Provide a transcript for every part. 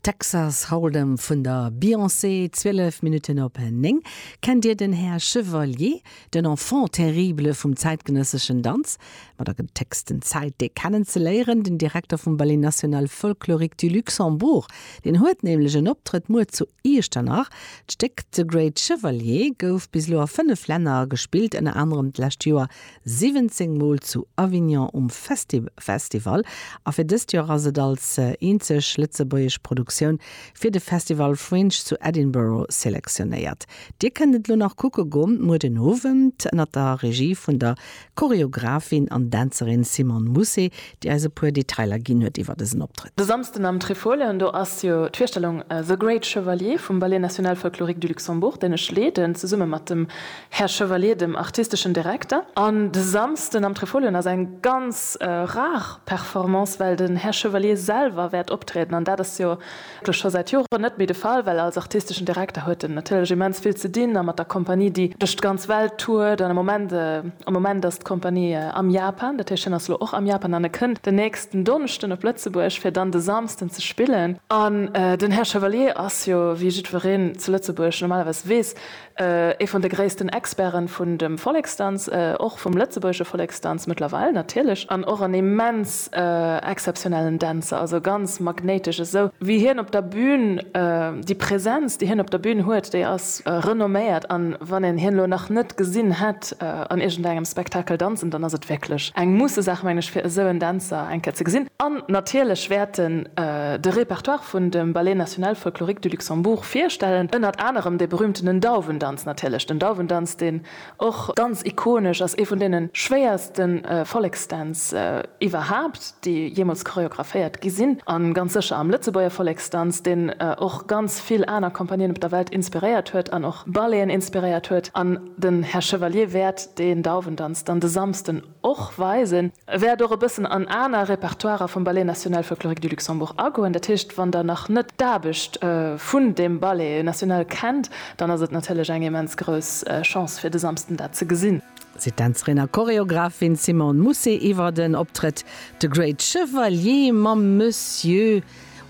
Texas Hold'em vun der Beyoncé, 12 Minutten op 9. Kennt Dir den Här Chevalier, den Enfant terrible vum zäitgenësseschen Danz? Mat a gëtt d'héchsten Zäit, dee kennen ze léieren, den Direkter vum Ballet National Folklorique du Luxembourg. Deen huet nämlech en Optrëtt muer zu Iechternach. D'Stéck The Great Chevalier gouf bis elo a fënnef Länner gespillt, ënner anerem d'lescht Joer 17 Mol zu Avignon um Festifestival a fir dëst Joer ass et als eenzeg lëtzebuergesch Produktioun fir de Festival Fringe zu Edinburgh selektionéiert. Dir kënnt et elo nach kucke go muer den Owend ënnert der Regie vun der Choreographin an Dänzerin Simone Mousset, déi eis e puer Detailer ginn huet iwwer dësen Optrëtt. De Samsden am Trifolion, do ass jo d'Virstellung The Great Chevalier vum Ballet National Folklorique du Luxembourg, deen ech leeden, zesumme mat dem Här Chevalier, dem artisteschen Direkter. An de Samsden am Trifolion ass eng ganz rar Performance, well den Här Chevalier selwer wäert optrieden. An dat ass jo elo scho säit Joren net méi de Fall, well als artisteschen Direkter huet en natierlech immens vill ze dinn a mat der Kompanie, déi duerch d'ganz Welt tourt. An am Moment, am Moment ass d'Kompanie am Japan. Dat heescht, hien ass elo och am Japan an e kënnt den nächsten Donneschden op Lëtzebuerg, fir dann de Samsden ze spillen. An den Här Chevalier ass jo, wéi jiddwereen zu Lëtzebuerg normalerweis weess, Ee vun de gréissten Experte vun dem Volleksdanz, och vum lëtzebuergesche Volleksdanz mëttlerweil natierlech, an och en immens exzeptionellen Dänzer, also ganz magnéitesch. Esou wéi hien op der Bün, déi Präsenz déi hien op der Bün huet, déi ass renomméiert, an wann een hien elo nach net gesinn hätt, Loscht an iergend engem Spektakel danzen, dann ass et wierklech eng Musse-Saach, mengen ech, fir esou en Dänzer eng Kéier ze gesinn. An natierlech wäerten de Repertoire vun dem Ballet National Folklorique du Luxembourg virstellen, ënnert anerem dee berühmtenen Dauwendanz natierlech, den Dauwendanz, deen och ganz ikonesch ass, ee vun deene schwéierste Volleksdänz iwwerhaapt, déi jeemools choreographéiert gi sinn, a ganz sécher am Lëtzebuerger Volleksdanz, deen och ganz vill aner Compagnien op der Welt inspiréiert huet an och Balleten inspiréiert huet. An. Den Här Chevalier wäert deen Dauwendanz dann de Samsden och weisen. E wäert och e bëssen an aner Repertoirer vum Ballet National Folklorique du Luxembourg agoen. Dat heescht, wann Der nach net d'Aarbecht vun deem Ballet National kennt, dann ass et natierlech eng immens grouss Chance fir de Samsden dat ze gesinn. Seet d'Dänzerin a Choreographin Simone Mousset iwwert en Optrëtt, De Great Chevalier mam Monsieur.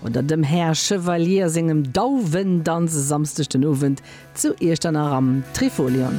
oder dem Här Chevalier sengem Dauwendanz e Samsdeg den Owend zu Iechternach am Trifolion.